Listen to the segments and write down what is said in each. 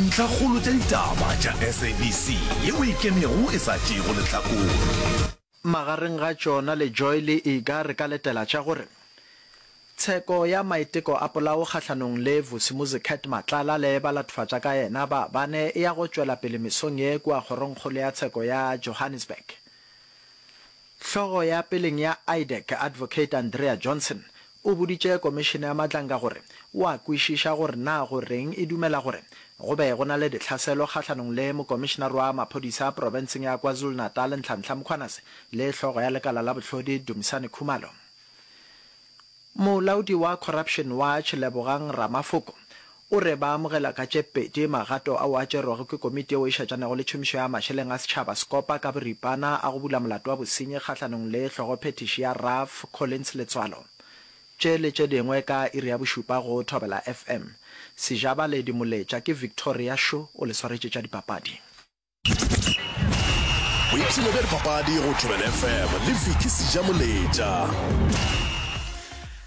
Ntlhakgolo tša ditaba tša SABC yeo e ikemego e sa tšeego lehlakore. Magareng ga tšona le Joy le Iga re ka letela tša gore, Tsheko ya maiteko a polao kgahlanong le Vusimuzi Cat Matlala le balatofadza ka yena ba bane e ya go tšwela pele mesong ye kua Kgorongkgolo ya Tsheko ya Johannesburg. Hlogo ya peleng ya IDEC, Advocate Andrea Johnson, O boditše Komišene ya Matlanka gore o a kwešiša gore na go reng e dumela gore go be go na le ditlhaselo kgahlanong le Mokomišenaroa Maphodisa Profenseng ya KwaZulu-Natal Nhlanhla Mkhwanase le Hlogo ya Lekala la Bohlodi Dumisani Khumalo. Molaodi wa Corruption Watch Lebogang Ramafoko O re ba amogela ka tše pedi magato ao a tšerwego ke Komiti yeo e Šetšanago le Tšhomišo ya Mašeleng a Setšhaba, Scopa, ka boripana a go bula molato wa bosenyi kgahlanong le hlogophethiši ya Ralph Collins Letswalo. Tše le tše dingwe ka iri ya bošupa go Thobela FM. Sejabale Dimoletša ke Victoria Shu o le swaretše tša dipapadi. boipshino bja dipapadi go tšwebel fm le viki sejamoletša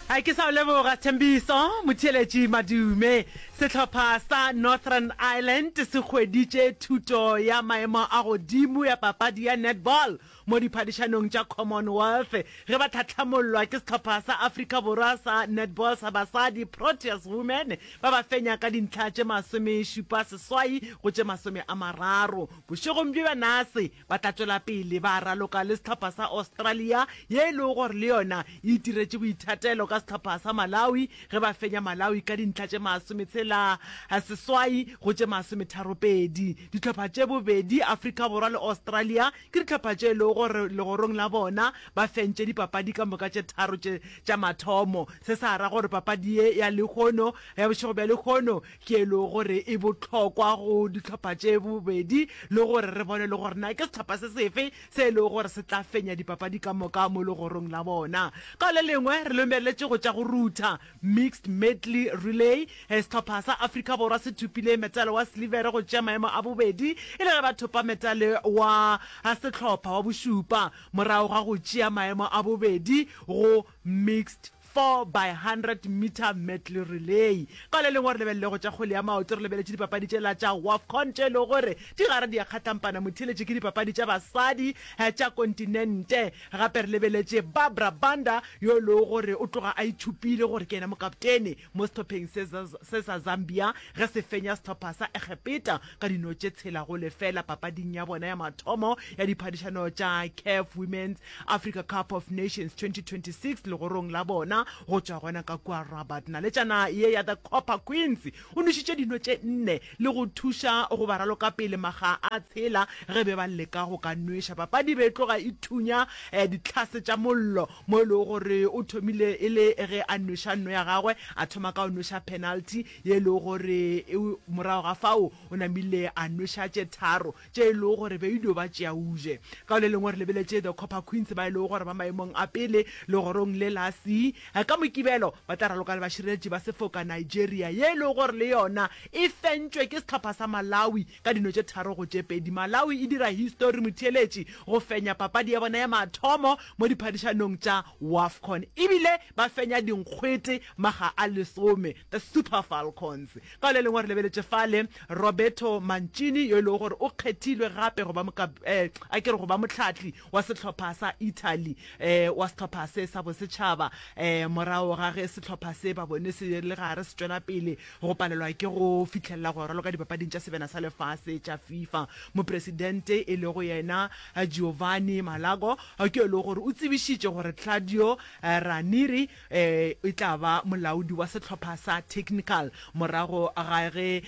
a ke sa o leboga thembiso motheeletši madume sehlopha sa northern ireland se hweditše thuto ya maemo a godimo ya papadi ya netball Mo diphadišanong tša Commonwealth, ge ba tlhahlamollwa ke sehlopha sa Afrika Borwa sa netball sa basadi, Proteas Women ba ba fenya ka dintlha tše masomešupa seswai go tše masome a mararo. Bošegong bjo bja nase, ba tla tšwela pele ba raloka le sehlopha sa Australia ye e lego gore le yona e itiretše boithatelo ka sehlopha sa Malawi ge ba fenya Malawi ka dintlha tše masometshela seswai go tše masometharo pedi. Dihlopha tše bobedi, Afrika Borwa le Australia, Ke dihlopha tše e lego gore legorong la bona ba fentše dipapadi ka moka tše tharo tše tša mathomo. Se sa ra gore papadi ye ya lehono ya bošego bja lehono ke e lego gore e bohlokwa go dihlopha tše bobedi le gore re bone le gore na ke sehlopha se sefe se e lego gore se tla fenya dipapadi ka moka mo legorong la bona. Ka le lengwe re lomeletše go tša go rutha. Mixed Medley Relay, Sehlopha sa Afrika Borwa se thopile metale wa silivere go tšea maemo a bobedi e le ge ba thopa metale wa sehlopha wa bošupa morago ga go tšea maemo a bobedi go Mixed 4 by 100 meter medley relay. Ka le lengwe re lebelele go tša kgwele ya maoto, re lebeletše dipapadi tšela tša Wafcon tše e lego gore di gare di a kgatlampana motheeletše ke dipapadi tša basadi tša kontinente. Gape re lebeletše Barbara Banda yo e lego gore o tloga a ithopile gore ke yena mokaptene mo sehlopheng se se sa Zambia ge se fenya sehlopha sa Egepeta ka dino tše tshela go lefela papading ya bona ya mathomo ya diphadišano tša CAF Women's Africa Cup of Nations 2026 legorong la bona go tšwa gona ka kua Rabat. Naletšana ye ya The Copper Queens o nwešitše dino tše nne le go thuša go ba raloka pele makga a tshela ge be ba leka go ka nweša. Papadi e be e tloga e thunya ditlhase tša mollo mo e lego gore o thomile e le ge a nweša nno ya gagwe a thoma ka go nweša penalty ye e lego gore morago ga fao o namile a nweša tše tharo. tše e lego gore be e dio ba tšea Uže. Ka le lengwe re lebeletše The Copper Queens ba e lego gore ba maemong a pele legorong le la C. Ka Mokibelo ba tla raloka le bašireletši ba sefoka Nigeria ye e lego gore le yona e fentšwe ke sehlopha sa Malawi ka dino tše tharo go tše pedi. Malawi e dira histori motheeletši go fenya papadi ya bona ya mathomo mo diphadišanong tša Wafcon ebile ba fenya dinkgwete makga a lesome. The Super Falcons. Ka le lengwe re lebeletše fale Roberto Mancini yo e lego gore o kgethilwe gape go ba moka, eh, a ke re go ba motlhatli wa sehlopha sa Italy, eh, wa sehlopha se sa bosetšhaba, eh, morago ga ge sehlopha se ba bone se le gare se tšwela pele go palelwa ke go fihlelela go raloka dipapading tša sebena sa lefase tša FIFA. Mopresidente e lego yena Giovanni Malago ke yo e lego gore o tsebišitše gore Claudio Ranieri e tla ba molaodi wa sehlopha sa Technical morago ga ge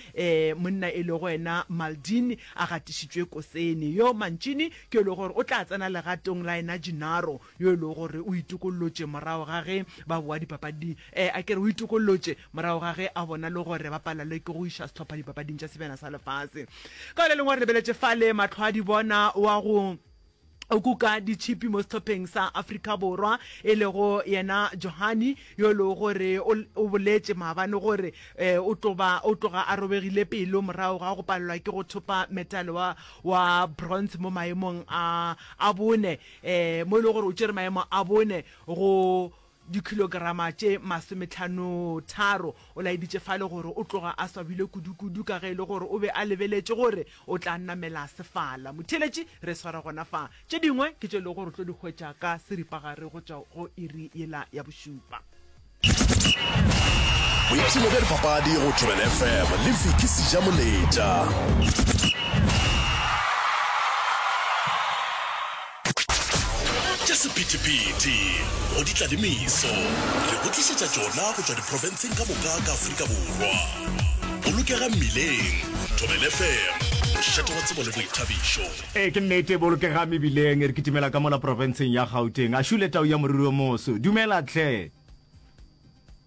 monna e lego yena Maldini a gatišitšwe kosene. Yo Mancini ke yo e lego gore o tla tsena legatong la yena Gennaro yo e lego gore o itokollotše morago ga ge ba bowa dipapading, a ke re o itokollotše morago ga ge a bona le gore ba palalwe ke go iša sehlopha dipapading tša Sebjana sa Lefase. Ka go le lengwe re lebeletše fale mahlo a dibona wa go. o kuka ditšhipi mo sehlopheng sa Afrika Borwa e lego yena Johani yo e lego gore o boletše maabane gore um o tloba o tloga a robegile pelo morago ga go palelwa ke go thopa metale wa wa bronze mo maemong a a bone um mo e lego gore o tšere maemo a bone go dikhilograma tše masometlhanotharo. O laeditše Fale gore o tloga a swabile kudukudu ka ge e le gore o be a lebeletše gore o tla namela sefala. Motheeletši, re swara gona fa. Tše dingwe ke tše e lego gore o tlo di hwetša ka seripagare go tšwa go iri yela ya bošupa. Boipshino bja dipapadi go Thobela FM le Vicky Sejamoletša. Tša sephethephethe go di tla le meso, re go tlišetša tšona go tšwa diprofenseng ka moka ka Afrika Borwa. Bolokega Mmileng, Thobela FM, mošate wa tsebo le boithabišo. Ee, ke nnete, Bolokega Mebileng, re kitimela ka mola profenseng ya Gauteng. Ashule Tau ya Moriri o Moso, dumela tlhe!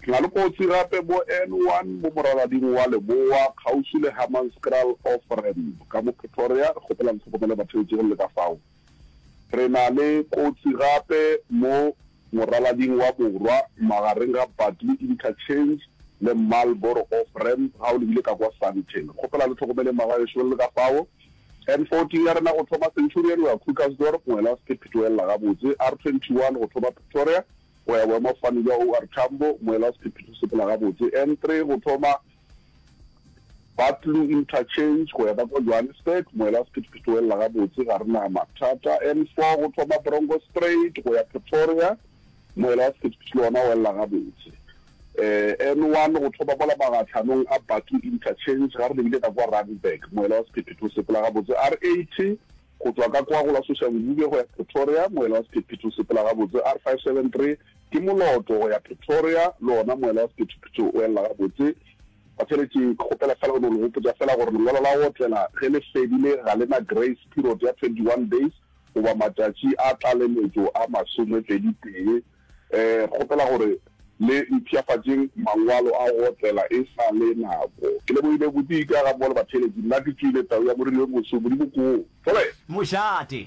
Re na le kotsi gape mo N one mo moralading wa leboa kgauswi le Hammanskraal off ramp ka mo Pretoria. Re kgopela le hlokomele batheetši go le ka fao. Re na le kotsi gape mo moralading wa borwa magareng ga Bartley Interchange le Marlboro off ramp ga o lebile ka kwa Sandton. Re kgopela le hlokomele mma gagešo go le ka fao. N fourteen ya rena go thoma Centurion go ya Krugersdorp, Ngwelast, Petoella gabotse. R twenty one go thoma Pretoria, Go ya boemafofane bja OR Tambo, moela sephetephete se pela gabotse N3 go thoma Batlou Interchange go ya ka kwa Johannesburg, moela sephetephete o elela gabotse, ga re na mathata. N4 go thoma Bronkoorspruit go ya Pretoria, moela sephetephete le wona o elela gabotse. N1 go thoma mola magatlhanong a Batlou Interchange, ga re lebile ka kwa Randburg, moela wa sephetephete o sepela gabotse. R80. Go tšwa ka kwa go la Sošabolobe go ya Pretoria, moela wa sephethephethe o sepela gabotse, R573 ke moloto go ya Pretoria, le wona moela wa sephethephethe o elela gabotse. Batheletši, ke kgopela fela go no le gopotša fela gore lengwalo la go otlela ge le fedile ga le na grace period ya 21 days goba matšatši a tlaleletšo a masomepedi tee, Kgopela gore le mpshafatšeng mangwalo a go otlela e sa le nako. Ke lebohile bodika ga mmogo le batheeletši. Nna ke tswile, tau ya moriri yo moso, Modimo koo. Fole! Mošate!